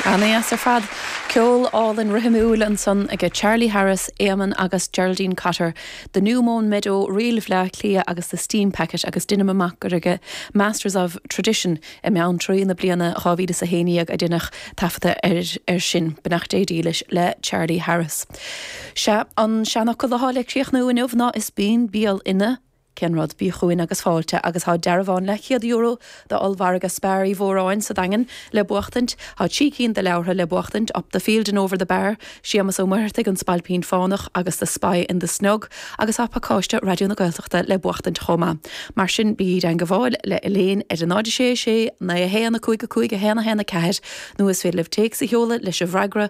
Ana dheas ar fad. Ceol álainn rithimiúil ansan aige Charlie Harris, Éamonn agus Geraldine Cotter, The New Mown Meadow, Ríl Bhleá Cliath agus The Steam Packet agus deinim amach gur aige Masters of Tradition i mBeanntraí na bliana 2011 a deineadh taifeadadh air sin. Beannacht Dé dílis le Charlie Harris. Sea, an seanfhocal atá le críochnú inniu ná is buan béal ina. Cén rud? Bí chugainn agus fáilte agus tá dearbhán leathchéad-euro d'ollmhargadh Spar Uí Mhóráin sa Daingean le buachtaint, tá trí cinn de leabhartha le buachtaint, Up the Field and Over the Bar, Séamus Ó Muircheartaigh, An Spailpín Fánach agus The Spy in the Snug agus tá pacáiste Raidió na Gaeltachta le buachtaint chomh maith. Mar sin, bígí i dteangmháil le Elaine ar a 0 6 6 9 1 5 5 1 1 4 nó is féidir libh téacs a sheoladh leis an bhfreagra,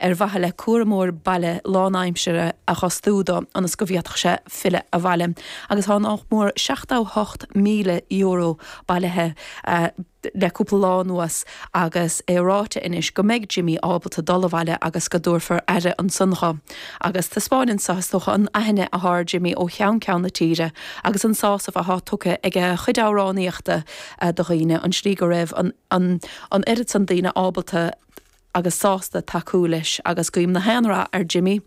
ar mhaithe le cúramóir baile lánaimseartha a dh'fhostú do, ionas go bhféadfadh sé filleadh abhaile, agus tá nach mór €78,000 bailithe le cúpla lá anuas agus é ráite anois go mbeidh Jimmy ábalta dul abhaile agus go dtabharfar aire ansan dho. Agus taispeáineann seo, is dócha, an aithne athá ar Jimmy ó cheann ceann na tíre agus an sásamh athá tugtha ag a chuid amhránaíochta do dhaoine, an tslí go raibh an oiread san daoine ábalta, agus sásta tacú leis agus guím na haon rath ar Jimmy.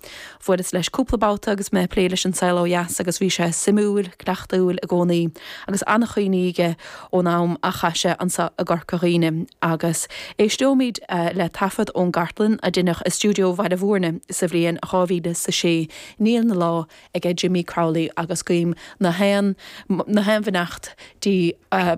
Bhuaileas leis cúpla babhta agus mé ag plé leis An Saol Ó Dheas agus bhí sé suimiúil, gleoite i gcónaí agus an-chuimhní aige ón am a chaith sé anseo i gCorca Dhuibhne agus éisteoimid le taifead ón gcartlann a deineadh i stiúideo Bhaile Mhúirne sa bhliain dhá mhíle is a sé. Níl na lá aige Jimmy Crowley agus guím na haon bheannacht Dé air.